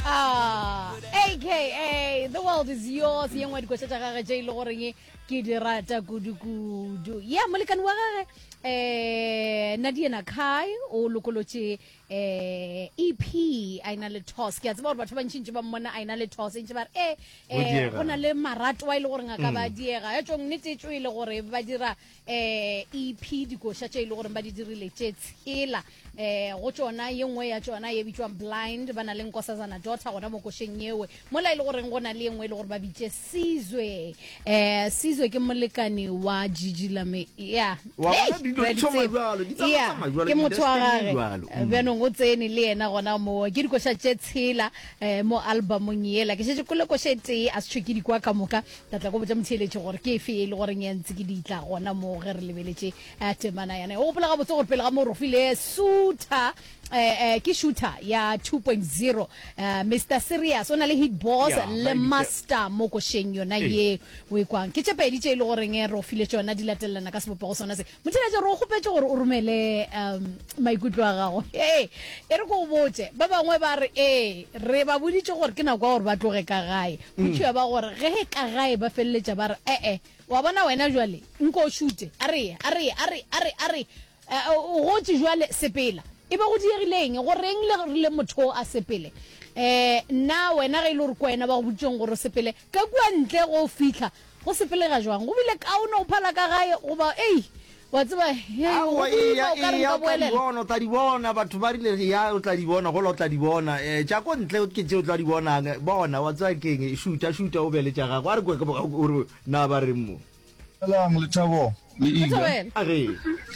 Ah, aka the world is yours ye nngwe dikoša tša gage tše e le goreng ke di rata kudu-kudu ya molekane wa gage eh nadiena kai o lokolotše eh ep a ena le tos ke a tseba gore batho ba ntšintši ba mmona a ena le tos e ntše ba re e Go eh diega. go na le maratoa e le goreng a ka ba diega e tšong nnete e tšo e le gore ba dira eh, ep dikoša tše e le goreng ba di dirile tše tshela eh, go tšona ye nngwe ya tšona ye bitšwang blind ba na le nkosazana dota gona mo košeng yewe mola e le goreng go na le ye nngwe e le gore ba bitše sizwe eh, sizwe ke molekane wa jiji lame ya Wa bona, Hey, dilo di Brady tšhoma Tsebo. jwalo, di tsamaya Yeah, tsamaya jwalo, ke motho wa industry-eng gage jwalo. Mm. bjanong o tsene le yena gona mo ke dikoša tše tshela um mo albumong ela ke šetse kole koša e tee a se tšhwe ke dikwa ka moka Ka tla go botša motheeletši gore ke efe e le goreng ya ntse ke di tla gona moo ge re lebeletše eh, temana yana. O gopola gabotse gore pele ga moo rofile suta eh, eh, ke shooter ya 2.0 eh, Mr Serious o na le hit boss Ya, le Mailisa. master mo košeng yona Ee. ye o e kwang ke tše pedi tše e le goreng eh, rofile tšona di latelelana ka sebopego sona se Motheletse, re o kgopetše gore o romele um maikutlo a gago. Ee, e re ko o botse. Ba bangwe ba re ee, re ba boditše gore ke nako ya gore ba tloge ka gae. Go tšhiwa ba gore ge e ka gae ba feleletša ba re ee, wa bona wena jwale nko o šute, a re ye, a re ye, a re, a re, a re, eh, o gotše jwale sepela. E be go diegile eng? Go reng le rile motho o a sepele? Eh, nna wena ge e le gore ko wena ba go boditšeng gore o sepele, Ka kua ntle go fihla go sepelega jwang, go bile kaone go phala ka gae, goba, ei, wa tseba, hei, go Aowa, eya, boima o ka re eya, nka o tla di boelela. bona, o tla di bona. Batho ba rile, Eya, o tla di bona, gola o tla di bona. Eh, tša ko ntle ke tše o tla di bonang. Bona, wa tseba ke eng, šuta, šuta, o be le tša gago. A re kwe, ke bo, o re, Na ba reng mo? Dumelang Lethabo le Iga.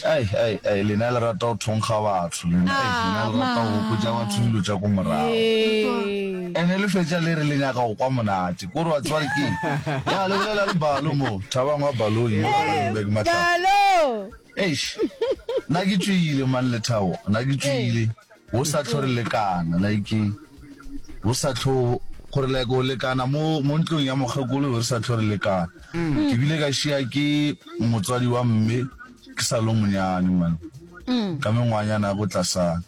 Ai, ai, ai, lena le rata go thonkga batho lena. Ai, lena le rata go gopotsa batho dilo tša ko morago. Ene le fetša le re le nyaka go kwa monate. Kore wa tseba ke ya le bolela le balo mo. Thabang wa balong yo a le beke matlapa. Eish. Nna ke tšwile man Lethabo, nna ke tšwile. Go sa tlo re lekana like go sa tlo gore like go lekana mo mo ntlong ya mokgekolo re sa tlo re lekana. Ke bile ka šia ke motswadi wa mme ke sa lo monyane man ka mengwanyana ya go tlasana.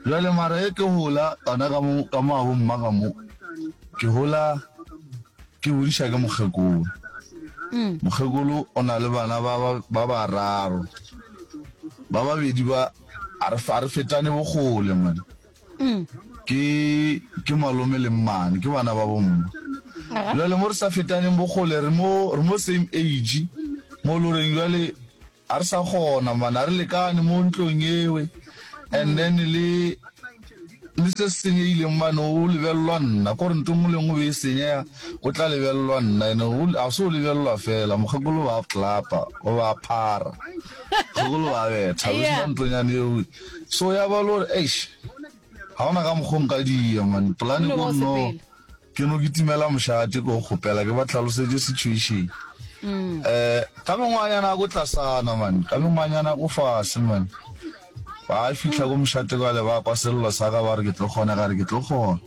Jwale mara e ke hola gona ka mo ka mo abo mma ka mo ke hola ke bodiša ke mokgekolo. Mokgekolo o na le bana ba ba bararo ba babedi ba A re a re fetane bokgole mane. Mm. Ke ke malome le mmane, ke bana ba bomme. Aha. Jwale mo re sa fetaneng bokgole re mo re mo same age mo loreng jwale a re sa kgona mane a re lekane mo ntlong ewe and then le Le se se senyegileng mane o lebelelwa nna, ko re nto nngwe le nngwe be e senyega, o tla lebelelwa nna. Ene o, ga se o lebelelwa fela, mokgekolo ba klapa, o ba phara, mokgekolo ba betha, o sena ntonyane eo. So ya ba le gore, eish, ga ona ka mokgwa o nka dia, man, polane ko nno, Ke no kitimela mošate ko kgopela ke ba tlhalosetše situation. Mm. Eh ka mengwanyana go tlasana man, ka mengwanyana go fase man. Ba fihla go mošate kwa le ba kwa sello sa ka ba re ke tlo kgona ga re ke tlo kgona.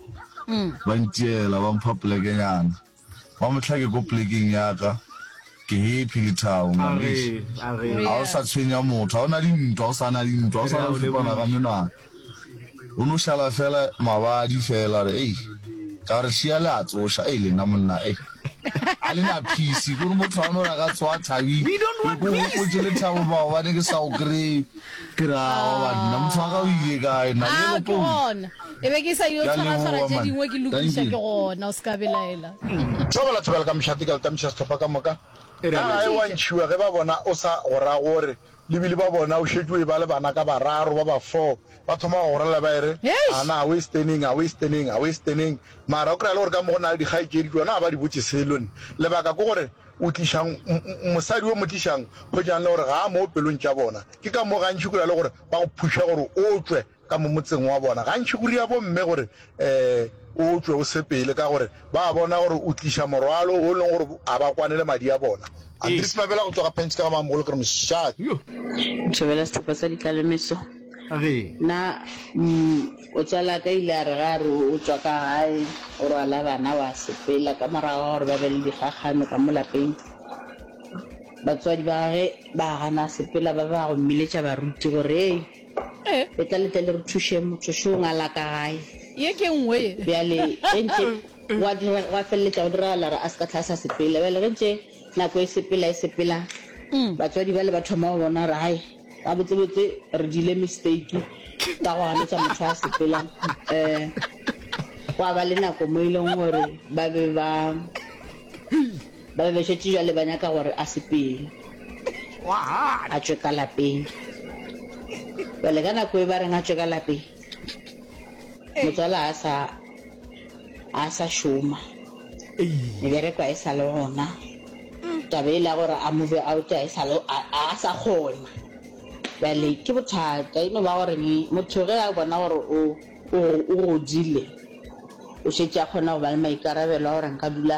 Mm. Ba ntiela ba mpha plekenyana. Ba motlha ke ko plekeng ya ka. Ke happy le thabo man. Ga o sa tshwenya motho, ga o na dintwa, o sa na dintwa, o sa na fipana ka menwana. O no šala fela mabadi fela, a re, Ei, ka re, Šia le a tsoša. Ei, lena monna, ei, a le na phisi, kore motho a no re a ka tsoga thabing, ke ko gopotše lethabo maobane ke sa go kry-e. Ke re, Aowa banna, motho wa ka o ile kae na? Yellow Ke Bone. gona. E be ke sa yo Ke a tshwaratshwara leboga, tše man. dingwe ke lokiša, Thank ke you. gona, o se ka belaela. Tšoba la thobela ka mešate, ka le tamiša sehlopha ka moka. E re, Ka gae wa ntšhiwa ge ba bona o sa go ra gore. Lebile ba bona o šetše o eba le bana ka bararo ba ba four, ba thoma go gorelela ba ere, Ana a westeneng, a westeneng, a westeneng. Mara o kry-a le gore ka mo go na le dikgaetšedi tšona ga ba di botše selo nne. Lebaka ke gore o tlišang mosadi yo mo tlišang, hwetšang le gore ga a mo pelong tša bona. Ke ka mo gantši o kry-a le gore ba go phuša gore o tšwe. ka mo motseng wa bona. Gantši go ria bomme gore o tšwe o sepele ka gore ba bona gore o tliša morwalo wo e lego gore a ba kwane le madi a bona. Andries Mabela go tloga Pench ka ga Mamogolo ke re mošate. Thobela sehlopha sa dikalemeso. A re. Na motswala ka ile a re ga a re o tšwa ka gae o rwala bana wa sepela ka morago ga gore ba be le dikgakgano ka mo lapeng batswadi ba gage ba gana sepela ba ba go mmiletša baruti gore le tla le tle le re thuše motho šo nga la ka gae ye ke nngwe ye bjale ge ntše wa dira wa feleletša go diragala re a se ka tlha sa sepela bjale ge ntše nako e sepela e sepela mm. batswadi ba le ba thoma go bona re gae ga botsebotse re dile mistake ka go ganetša motho a sepela um gwa ba le nako mo e leng gore ba be ba Ba be ba šetše bjale ba nyaka gore a sepele, a tšwe ka lapeng. Bjale ka nako e ba reng a tšwe ka lapeng, motswala a sa a sa šoma, mebereko a e sa le gona, taba e la gore a move out a e sa le a sa kgona. Bjale ke bothata e no ba gore motho ge a bona gore o o godile, o šetše a kgona go ba le maikarabelo a gore nka dula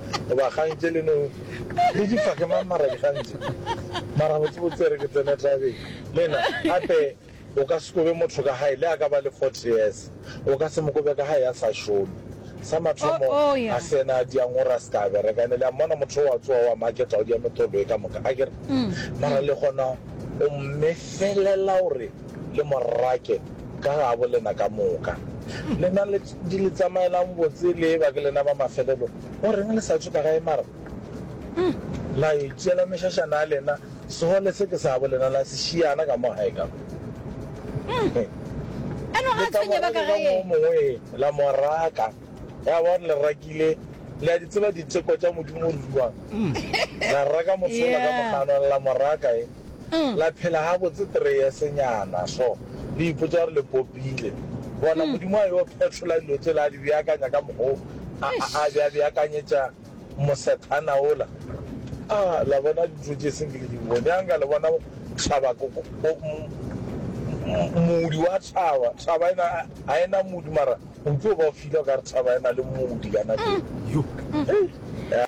goba kgang tše le no le di fa ke mang mara dikgang tše mara botsebotse re ke tsene tabeng le na gape o ka se kobe motho ka gae le a ka ba le forty years o ka se mo kobe ka gae a sa šome sa mathomo oh, oh, yeah. a se ena a diangora se ka bereka ne le a mmona motho wa tsoa wa maketa o dia metholo e ka moka a kere mm, mara mm. le gona o mmefelela gore le morake ka gabo lena ka moka. Lena le di le tsamaelang botse le eba ke lena ba mafelelo, o reng le sa tšhoka gae mara? Uhm, la yo itšeela mešašana ya lena, sehole se ke sa bo lena la se šiana ka mo gae ka mo. Uhm, a no ga a tshwenye ba ka gae. Mongwe la mo raka, ya ba le rakile, le a di tseba diteko tša Modimo ruri wang? Uhm, la raka motho ola ka moganwa la mo raka e. la phela gabotse three years-nyana so, le ipotša gore le popile. Bona, Modimo a yo phetlola dilo tšela, a di beakanya ka mokgwa wo a, a, a be a beakanyetša mosethana wola. A, la bona dintho tše se nke ke di bone. A nka le bona thaba, ko, ko, ko, m, moodi wa thaba. Thaba e na, ga e na moodi, mara o tlo ba o fila o ka re thaba e na le moodi ka nako ye. Yo, hei, ya.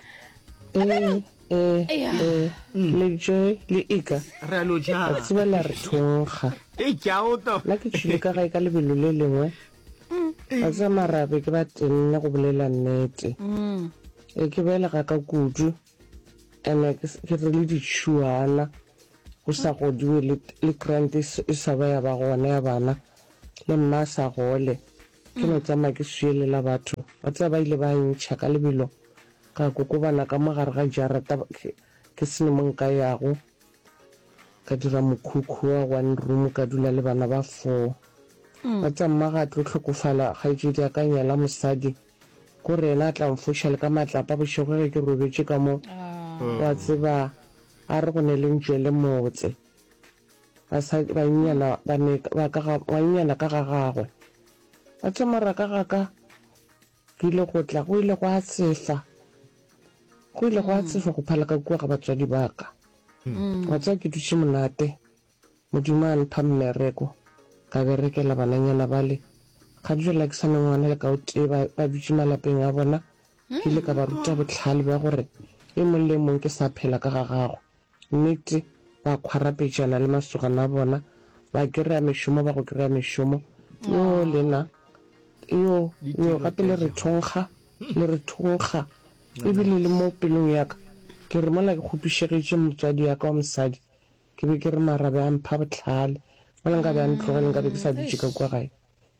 Nna, Eh, eh, le Joy, le Ika, Re a no ja. a tseba la re thonkga. E tšago to. Nna ke tšhile ka gae ka lebelo le lengwe. A tseba marabe ke ba tenne go bolela nnete. E ke belega ka kudu. Ene ke s- ke re le ditšhuana. Go sa godiwe le, le grant e s- e sa ba ya ba gona ya bana. Le mma a sa gole. Ke no tsamaya ke swiyelela batho. Wa tseba ba ile ba ntšha ka lebelo. Ka kokobana ka mo gare ga jarata ke se ne mo nka yago, ka dira mokhukhu wa one room ka dula le bana ba four. Ba tsa mma ga tlo hlokofala, kgaetšedi a ka nyala mosadi ko re yena a tla nfoša le ka matlapa bošego ge ke robetše ka mo, wa tseba a re go ne le ntšwe le motse. Basadi, bannyana ba ne ba ka ga, ngwannyana ka ga gagwe. Wa tseba moraka ga ka. Go ile go tla, go ile gwa tsefa, go ile gwa tsefa go phala ka kua ga batswadi ba ka. Wa tseba, ke dutše monate, Modimo a mpha mmereko, ka berekela bananyana bale. Ga bjale ke sa ne ngwana le ka o tee, ba, ba dutše malapeng a bona. Ke ile ka ba ruta bohlale bja gore e mong le e mong ke sa phela ka ga gagwe. Nnete, ba khwarapetšana le masogana a bona, ba kry-a mešomo, ba go kry-a mešomo. Yoo, lena, yoo, yoo, gape le re thonkga, le re thonkga. E bile le mo pelong ya ka, ke re mola ke kgopišegetše motswadi ya ka wa mosadi, ke be ke re mara be a mpha bohlale, mola nka be a ntlogele, nka be ke sa dutše ka kua gae.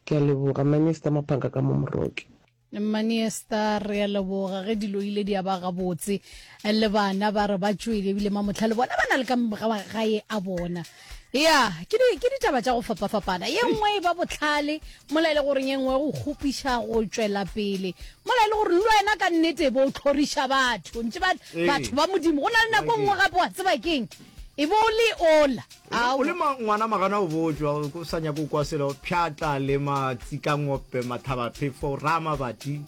Ke a leboga, Minister Mophanka ka mo Moroke. mmane star re a leboga ge dilo ile di a ba gabotse le bana ba re ba tšwele ebile mamotlha le bona ba na le ka gae a bona ya ke ditaba tša go fapafapana ye nngwe e ba botlhale mola e le goreng ye nngwe go kgopiša go tšwela pele mola e le gore le wena ka nnete bo o tlhoriša batho ntse batho ba modimo go na le nako nngwe gape wa tseba keng e bo le ola O le ngwana magana o bojwa, o sa nyako kwa selo, pšhatla le matsikangope, mathabaphefo, rama bati,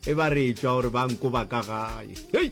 e ba re etšwa gore ba nko ba ka gae. Hei!